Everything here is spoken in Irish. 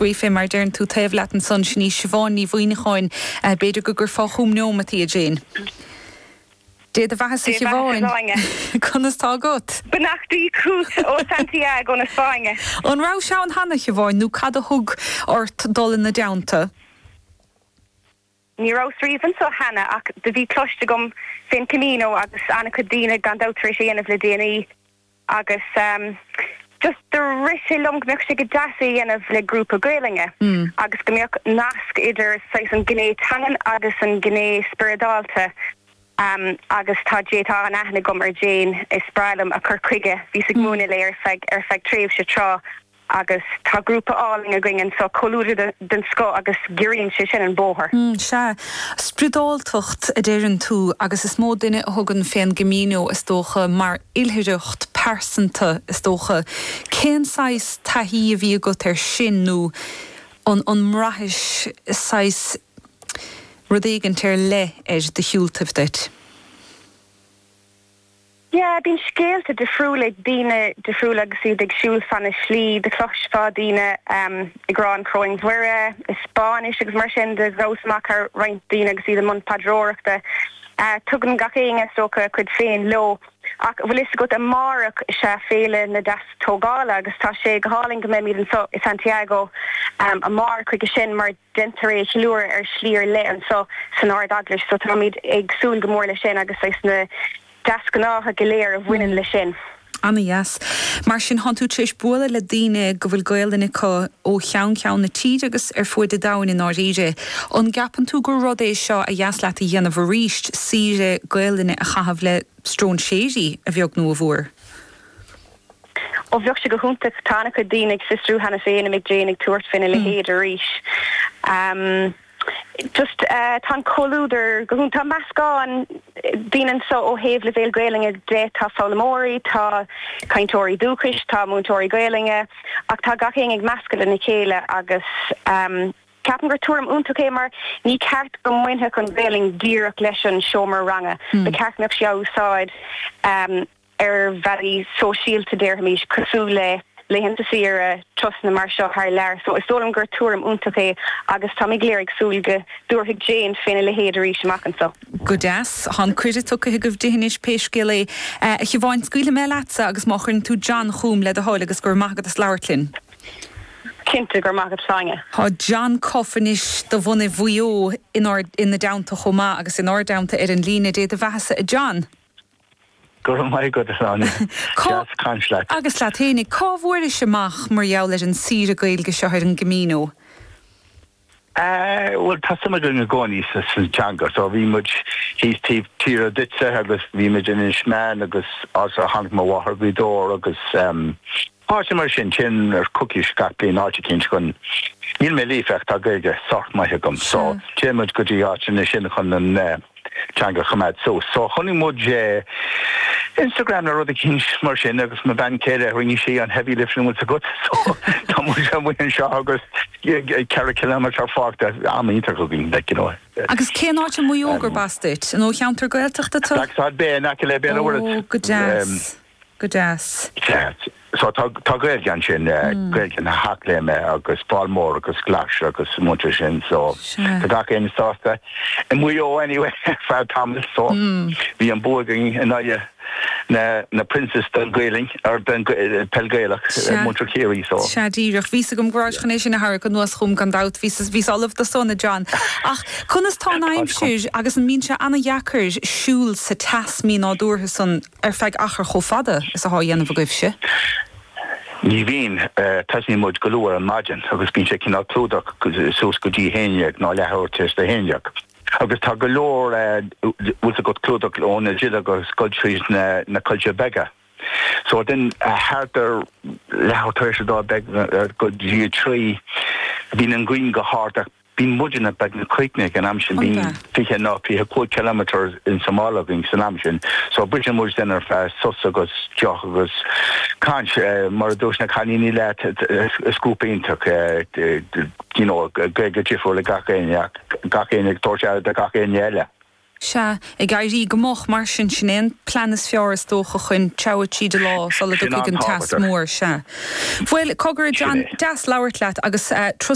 Gaoithfidh, mar deireann tú taobh leat ansan, sin í Siobhán Ní Mhuimhneacháin. B'fhéidir go gcuirfeá chúm neómat í, a Jane. Dé do bheathasa, a Shiobháin. Conas tá agat? Beannachtaí chút ó Santiago na Spáinne. An rabhais ann cheana, a Shiobháin, nó cad a thug ort dul ina dteannta? Ní rabhas riamh anso cheana, ach do bhí cloiste agam fén Camino agus an-chuid daoine gan dabht tar éis é dhéanamh le déanaí agus just do rith sé liom go mbeadh sé go deas é dhéanamh le grúpa Gaelainne agus go mbeadh nasc idir saghas an ghné teangan agus an ghné spioradálta agus tá J, tá an-aithne agam ar Jane, is breá liom a cur chuige, bhíos ag múineadh léi ar feadh tréimhse tráth. Agus tá grúpa álainn againn anso, comhluadar den scoth, agus giorraíonn sé sin an bóthar. Sea. Spriodáltacht a deireann tú, agus is mó duine a thugann fén gCamino, is dócha, mar oilithreacht pearsanta, is dócha. Cén saghas taithí a bhí agat ar sin, nó an mbraithis saghas, rud éigint ar leith ar do shiúltaibh duit? Yeah, bíonn scéalta difriúla ag daoine difriúla agus iad ag siúl fan na slí. Do chloisfeá daoine ehm, ag rá an Choróin Mhuire i Spáinnis agus mar sin. Do ghabhas amach thar roinnt daoine agus iad i mbun paidreoireachta. Eh, tugann gach éinne, is dócha, a chuid féin leo. Ach, bhfuil 'fhios agat, amárach is ea Féile na Deastógála agus tá sé go hálainn go mbeimid anso i Santiago ehm, amárach chuige sin mar, déantar é a cheiliúradh ar shlí ar leith anso san Ard-Eaglais so táimid ag súil go mór leis sin agus leis na deasghnátha go léir a bhaineann leis sin. Ana-dheas. Mar sin, tánn tú tar éis bualadh le daoine go bhfuil Gaolainn acu ó cheann ceann na tíre agus ar fuaid an domhain i ndáiríre. An gceapann tú gur rud é seo ba dheas leat a dhéanamh arís, saoire Gaolainne a chaitheamh le stróinséirí, a bheag nó a mhór? Ó bheadh sé go hiontach tá ana-chuid daoine ag fiosrú cheana féin an mbeidh Jane ag tabhairt faoina leithéid arís. Just tá an comhluadar go hiontach. Tá meascán daoine anso ó thaobh leibhéal Gaolainne de, tá foghlaimeoirí, tá cainteoirí dúchais, tá múinteoirí Gaolainne ach tá gach éinne ag meascadh lena chéile agus ceapaim gur tuairim iontach é mar ní ceart go mbainfeadh an Ghaolainn díreach leis an seomra ranga. Ba cheart go mbeadh sí á úsáid. ar bhealaí sóisialta, déarfaimis, cosúil le laethanta saoire, turasanna mar seo thar lear. So is dóigh liom gur tuairim iontach é agus táimid go léir ag súil go dtabharfaidh Jane féna leithéid arís amach anseo. Go deas. Tá an cuireadh tugtha agaibh di anois pé scéal é. A Shiobháin, scaoilfidh mé leatsa agus má chuireann tú John chúm, le do thoil, agus go raibh maith agat as labhairt linn. Cinnte, go raibh maith agat, Sonia. Tá John Cuffe anois de bhunadh Mhaigh Eo inár, ina dteannta chomh maith agus inár dteannta ar an líne. Dé do bheathasa a John. Go raibh maith agat, a Shláine. Seá, deas caint leat. Agus leat fhéinig, cá bhfuairis amach mar gheall ar an saoire Gaeilge seo ar an gCamino? Ahh, bhuel, tá suim againn i gcónaí sa teanga. So, bhí muid thíos taobh tíre Duibhneach agus bhí muid in Inis Meáin agus áit ar tháinig mo mháthair, Gaoth Dobhair, agus ehm, Áiteanna mar sin téann ar chúrsaí gach bliain áit eicínt chun Níl mé líofa ach tá Gaeilge sách maith agam so Sea. téann muid go dtí áiteanna sin chun an teanga a choimeád suas. So chonaic muid é ar Instagram nó rud eicínt mar sin agus mo bhean chéile rinne sí an heavy lifting an bhfuil 's agat so tá muid amuigh anseo agus ceithre kilometre fágtha, am iontach againn like, you know. Agus cén áit i Maigh Eo gurb as duit? Nó cheantar Gaeltachta tú? Blacksod Bay in aice le Béal an Mhuirthead. Ó, go deas. Go deas. Ceart. So tá tá Gaeilge ansin eh Gaeilge na hEachléime agus Fál Mór agus Glais agus an muintir sin so tá gach aon sásta i Maigh Eo anyway ar feadh tamaill so bhí an bua againn in aghaidh na na Princes den Ghaelainn or den peil Gaelach muintir Chiarraí so. Sea díreach. Bhí a fhios agam go rabhais chun é sin a tharrac anuas chugam gan dabht bhí bhíos ullamh dó san a John. Ach conas tá an aimsir agus an mbíonn sé an-deacair siúl sa teas mínádúrtha san Ar feadh achar chomh fada is atá á dhéanamh agaibhse? Ní bhíonn. Tosaíonn muid go luath ar maidin agus bíonn sé cineál clúdach suas go dtí a haon dhéag nó a leathuair tar éis a haon dhéag. Agus tá go leor, bhfuil 's agat clúdach ó na duilleoga ag dul tríd na coillte beaga. So then thart ar leathuair tar éis a dó dhéag go dtí a trí bíonn an ghrian go hard ach. Bíonn muidne, beagnach críochnaithe ag an am sin, bíonn fiche nó fiche cúig kilometre insa mála againn san am sin, so briseann muid den ar feadh sos agus deoch agus caint, mar a dúirt na cailíní leat, is grúpa iontach é, you know, Gaeilge difriúil ag gach éinne ach gach éinne ag tabhairt aire do gach éinne eile. Sea, ag éirí go moch mar sin, sin é an plean is fearr is dócha chun treabhadh tríd an lá sula dtiocfaidh an teas mór, sea. Bhuel, cogar, a John, deas labhairt leat agus.